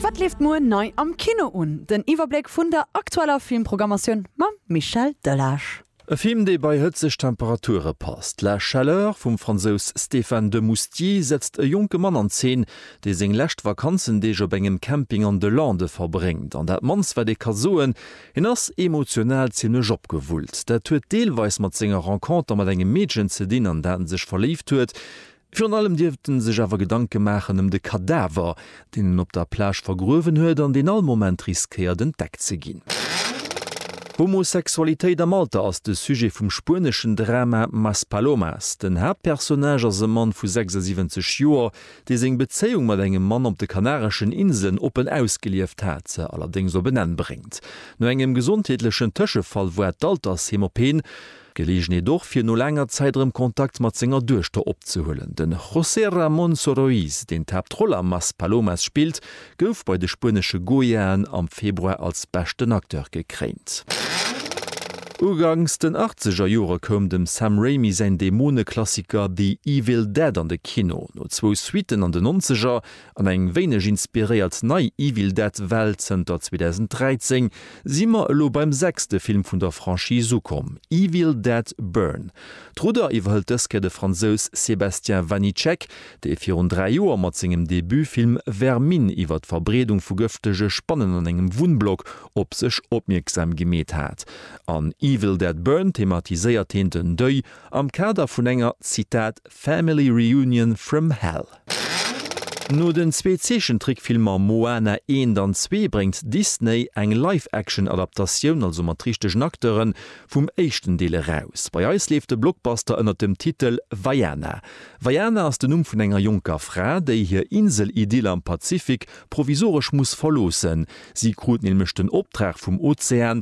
Wat leeft muer nei am Kino un? Den Iwwerbléck vun der aktueller Filmprogrammatioun mam Michel Delage. E Film, dee bei hëtzeg Temperature passt. La chaleur vum Fransous Stéphane Demoustier setzt e jonke Mann an Zeen, dee seng lescht Vakanzendeeg op engem Camping an de Lande verbréngt. An dat mannst wat ee ka soen, hien ass emotional zimlech opgewullt. Dat huet deelweis mat senger Renconter mat engem Meedchen ze dinn, an dat en sech verléift huet. Virun allem dierft en sech awer Gedanke maachen ëm de Kadaver, deen en op der Plage vergruewen huet an deen all Moment riskéiert entdeckt ze ginn. Homosexualitéit am Alter ass de Sujet vum spueneschen Drama Maspalomas. Den Haaptpersonnage ass e Mann vu 76 Joer, dee seng Bezéiung mat engem Mann op de Kanareschen Inselen oppen ausgelieft hat, se allerdéngs op en Enn bréngt. No engem gesondheetlechen Tëschefall woart d'Altersheem op een. Geleegenheet och fir no laanger Zäit erëm Kontakt mat senger Duechter opzehuelen. Den José Ramón Soroís, deen d'Haaptroll a Maspalomas spillt, gouf bei de spuenesche Goyaen am Februar als beschten Acteur gekréint. Uganks den achtzeger Jore koum dem Sam Raimi säin Dämone-Klassiker The Evil Dead an de Kino. No zwou Suitten an den Nonzeger, An eng wéineg inspiréiert nei Evil Dead Welt, zënter 2013 si mer elo beim sechste Film vun der Franchise ukomm, Evil Dead Burn. D'Rudder iwwerhëlt dës Kéier de Fransous Sébastien Vanitschek, dee virun dräi Joer mat sengem Debutfilm Vermine iwwer d'Verbreedung vu gëftege Spannen an engem Wunnblock op sech opmierksam gemeet hat. An Evil Dead Burn thematiséiert heen den Deuil am Kader vun enger, Zitat, Family Reunion from Hell. No den zwee Zeechentrickfilmer Moana eent an zwee bréngt Disney eng Live-Action-Adaptatioun, also mat richtegen Acteuren, vum éischten Deel eraus. Bei eis leeft de Blockbuster ënnert dem Titel Vaiana. Vaiana ass den Numm vun enger jonker Fra, déi hir Insel-Idyll am Pazifik provisoresch muss verloossen. Si krut nämlech den Optrag vum Ozean,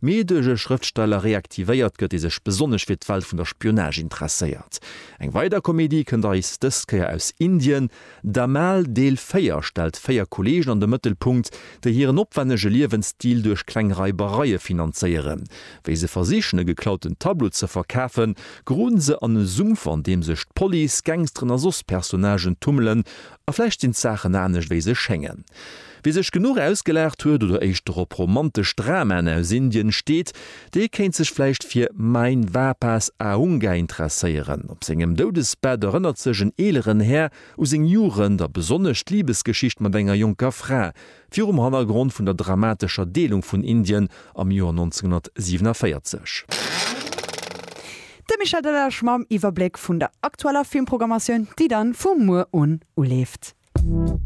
mee duerch e Schrëftsteller reaktivéiert gëtt, dee sech besonnesch fir d'Welt vun der Spionage interesséiert. Eng weider Komedie kënnt eis dës Kéier aus Indien. Dhamaal Deel 4 stellt véier Kolleegen an de Mëttelpunkt, déi hiren opwännege Liewensstil duerch kleng Raibereie finanzéieren. Wéi se versichen, e geklauten Tableau ze verkafen, geroden se an e Sumpf, an deem sech d'Police, Gangsteren a soss Personnagen tummelen. A vläicht sinn d'Saachen anescht, wéi se schéngen. Wie sech genuch ausgelaacht huet oder éischter op romantesch Dramaen aus Indien steet, dee kéint sech vläicht fir Mein Vapas Aunga interesséieren. Op sengem Doudesbett erënnert sech en eeleren Här u seng Jugend a besonnesch d'Libesgeschicht mat enger jonker Fra, virum Hannergrond vun der dramatescher Deelung vun Indien am Joer 1947. De Michel Delage mam Iwwerbléck vun der aktueller Filmprogrammatioun, déi dann vu muer un uleeft.